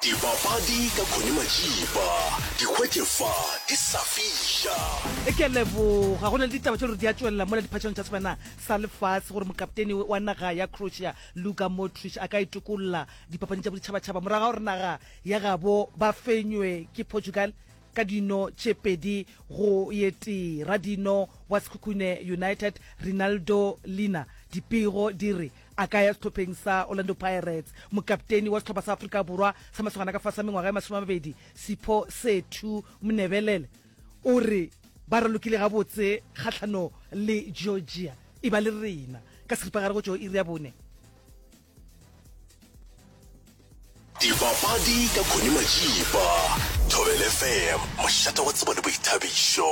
Dipapadi ka Connie Majiba, di hwetše fa di sa fiša. E ke leboga go na le ditaba tše gore di a tšwelela mola diphatšhong tša sebana sa lefase gore mokapteni wa naga ya croatia luka modric a ka itokolola dipapading tša boditšhabatšhaba morago ga gore naga ya gabo ba fenywe ke portugal ka dino tše pedi go ye tee radino wa sekhukhune united rinaldo lina dipego di re A ka ya sehlopheng sa Orlando Pirates. Mokapteni wa sehlopha sa Afrika Borwa sa masogana ka fase a mengwaga ya masome a mabedi, Sipho Sethu Mnebelele o re ba ralokile gabotse kgahlano le Georgia e ba le rena ka seripagare go tšo iri ya bone. Dipapadi ka Connie Majiba, Thobel FM, mošate wa tsebo le boithabišo.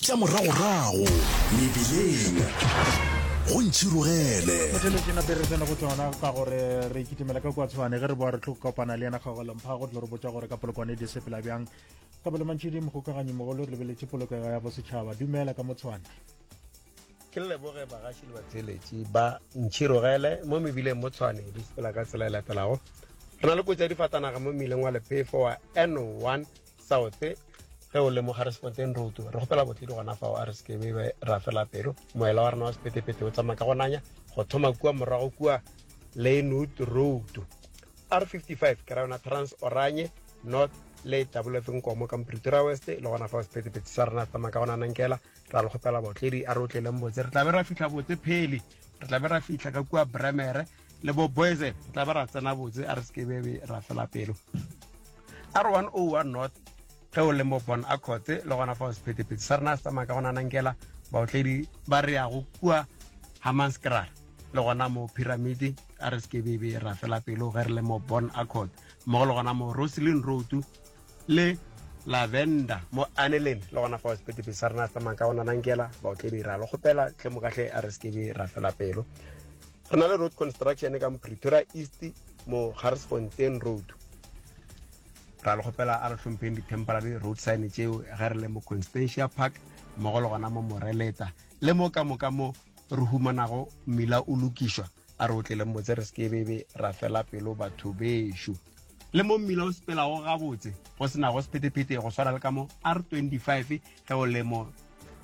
Tša moragorago mebileng go ntšhirogele. Motšhelo ke nateresene go tšona ka gore re kitimela ka kwatshwane ge re boa re tlo kopana le yena kgagolemompha go tlo re botša gore ka polokwane di sepela bjang ka bole mantšhedi mogokaganyi mogolo re lebeletše polokego ya bosetšhaba dumela ka motshwane ke leboge bagaši le batheeletši ba ntšhirogele mo mebileng mo tshwane di sepela ka tsela e latelago re na le kotsi ya difatanaga mo mmileng wa lepefo wa n1 South ge o le mo Harrisfontein Road re gopela botledi gona fao a re sekebe be ra fela pelo moela wa rena wa sepetepete o tsamaya ka go nanya go thoma kua morago kua Lynwood Road R55 ke ra yona Trans Oranye North le tabuletseng komo ka Pretoria West le gona fao sepetepete sa rena se tsamaya ka go nanankela ra le gopela botledi a re o tleleng botse re tlabe ra fitlha botse phele re tlabe ra fitlha ka kua Bremere le bo boys re tla ba ra tsena botse a re se be be ra fela pelo a re 101 north ge o le mo bon a khotse le gona fa o sephetephete sa rena se tsamaya ka gona nankela baotledi ba re yago kua hamanskrara le gona mo pyramidi a re se be be ra fela pelo ge re le mo bon a khotse mmogo le gona mo roselin road le lavenda mo aneleng le gona fa o sephetephete sa rena se tsamaya ka gona nankela baotledi ra le kgopela tle mo katlhe a re se be ra fela pelo Re na le road construction ka mo Pretoria East mo Garsfontein Road. Ra le kgopela a re hlompheng di-temporary road sign tšeo ge re le mo Constantia Park mmogo le gona mo Moreleta le mo ka moka mo re humanago mmila o lokišwa a re o tleleng motse re sekebebe ra fela pelo batho bešo le mo mmila o sepelago gabotse go senago sephetephete go swara le ka mo R25 Ge o le mo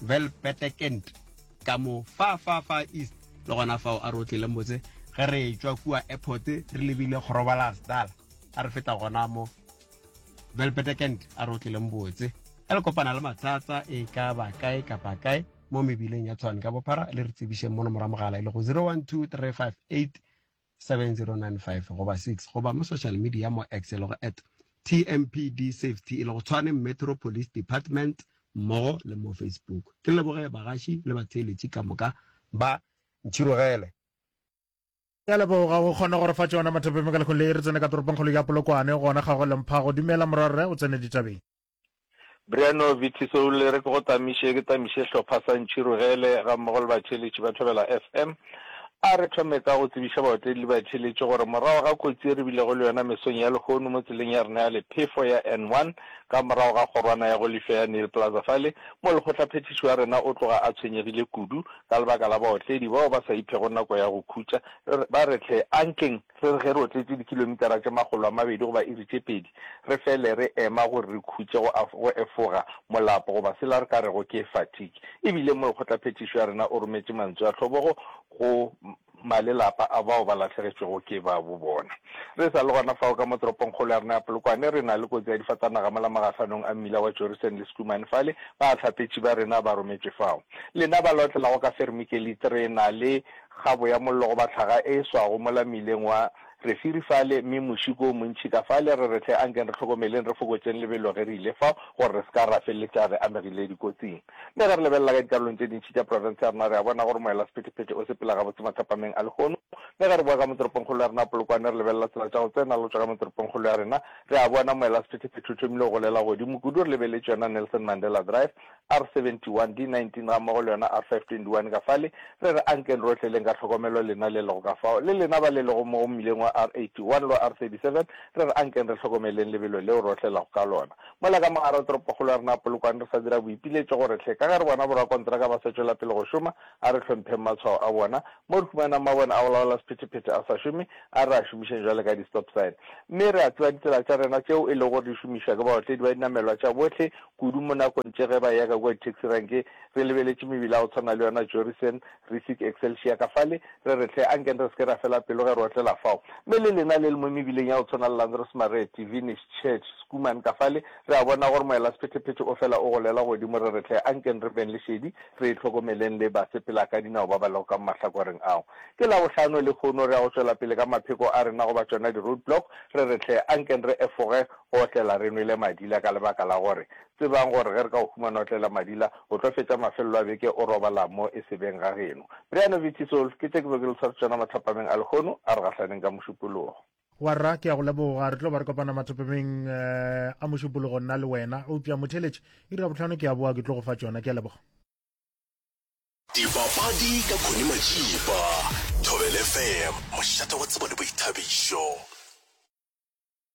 Velpetekent, ka mo far, far, far east, le gona fao a re otlile motse, ge re etšwa kua airport re lebile Groblersdal, a re feta gona mo Velpetekent, a re otlile motse. Ge le kopana le mathata e ka ba kae kapa kae mo mebileng ya Tshwane ka bophara, le re tsebišeng mono morwa mogala e lego 012 358 7095 goba 6 goba mo social media mo X e lego at TMPD Safety e lego Tshwane Metro Police Department mmogo le mo Facebook. Ke leboge bagaši le batheeletši ka moka ba ntšhirogele. Ke a leboga go kgona gore fa tšona mathapeng ka lekgong le re tsene ka toropongkgolo ya Polokwane gona ga go lemphago. Dumela morwarre o tsene ditabeng. Briano Vitisoule re ke go tamiše ke tamiše hlopha sa Ntšhirogele ga mmogo le batheeletši ba Thobela FM. A re thome ka go tsebiša baotledi le batheeletši gore morago ga kotsi e re bilego le yona mesong ya lehono mo tseleng ya rena ya lephefo ya N1 ka morago ga kgorwana ya go lifša ya Neil Plaza fale mo lekgotlaphethiši wa rena o tloga a tshwenyegile kudu ka lebaka la baotledi bao ba sa iphego nako ya go khutša ba re hle a nkeng Re re ge re otletše dikilomitara tše makgolo a mabedi goba iri tše pedi, re fele re ema gore re khutše go go efoga, molapo goba sela re ka rego ke fatigue. E bile mo Lekgotlaphethišo ya rena o rometše mantsu a tlhobogo go malelapa a bao ba lahlegetšwego ke babo bona. Re sa le gona fao ka mo toropongkgolo ya rena ya Polokwane, re na le kotsi ya difatanaga mola magahlanong a mmila wa Jorrison le Schoeman fale, bahlapetši ba rena ba rometšwe fao. Lena ba la otlelago ka Vermikelite re na le kgabo ya mollo goba tlhaga e e swago mola mmileng wa Refiri fale, mme mošiko o montši ka fale, re re hle ankeng re hlokomeleng re fokotšeng lebelo ge re ile fao gore re se ka ra feleletša re amegile dikotsing. Mme ge re lebelela ka dikarolong tše dintši tša profense ya rena re a bona gore moela-sephetephete o sepela gabotse mathapameng a lehono. Mme ge re boa ka motoropongkgolo ya rena ya Polokwane re lebelela tsela tša go tsena le go tšwa ka motoropongkgolo ya rena, re a bona moela-sephetephete o thomile go golela godimo kudu re lebeletše yona Nelson Mandela Drive, R71, D19 gammogo le yona R521 ka fale. Re re ankeng rohle leng ka tlhokomelo lena le lego ka fao, le lena ba le lego mo go mmileng wa R81 le wa R37, re re ankeng re hlokomeleng lebelo leo re otlelago ka lona. Mola ka mogare toropokgolo ya rena a polokwang re sa dira boipiletšo gore hle, ka ge re bona borakontraka ba sa tšwela pele go šoma, a re hlompheng matshwao a bona. Mo re humanang mabone a go laola sephetephete a sa šome, a re a šomišeng jwalo ka di-stop sign. Mme re a tseba ditsela tša rena tšeo e lego gore di šomišwa ke baotledi ba dinamelwa tša bohle, kudu mo nakong tše ge ba yaka kua ditaxi ranke re lebeletše mebila ya go tshwana le yona Jorrison, Risic, Excelsior ka fale, re re hle, anke re se ke ra fela pelo ge re otlela fao. Mme le lena le le mo mebileng ya go tshwana le Landrosmarete, Vinish, Church, Schoeman ka fale, re a bona gore moelasephetephete o fela o golela godimo, re re hle, anke re beng lešedi, re hlokomeleng le basepelakadinao ba ba lego ka mo mahlakoreng ao. Ke Labohlano lehono, re ya go tšwela pele ka mapheko a rena goba tšona di-roadblock, re re hle, anke re efoge Go otlela re nwele madila ka lebaka la gore tsebang gore ge re ka go humana o otlela madila, o tlo fetša mafelelo a beke o robala mo e se beng ga geno. Brian of Itisol, Ke tše ke bego ke le sware tšona mathapameng a lehono a re gahlaneng ka mošupologo. Warra, Ke a go leboga. Re tlo ba re kopana mathapameng a mošupologo nna le wena. Eupša motheeletši, iri ya bohlano ke a boa ke tlo go fa tšona. Ke a leboga. Dipapadi ka Connie Matšipa, Thobela FM, mošate wa tsebo le boithabišo.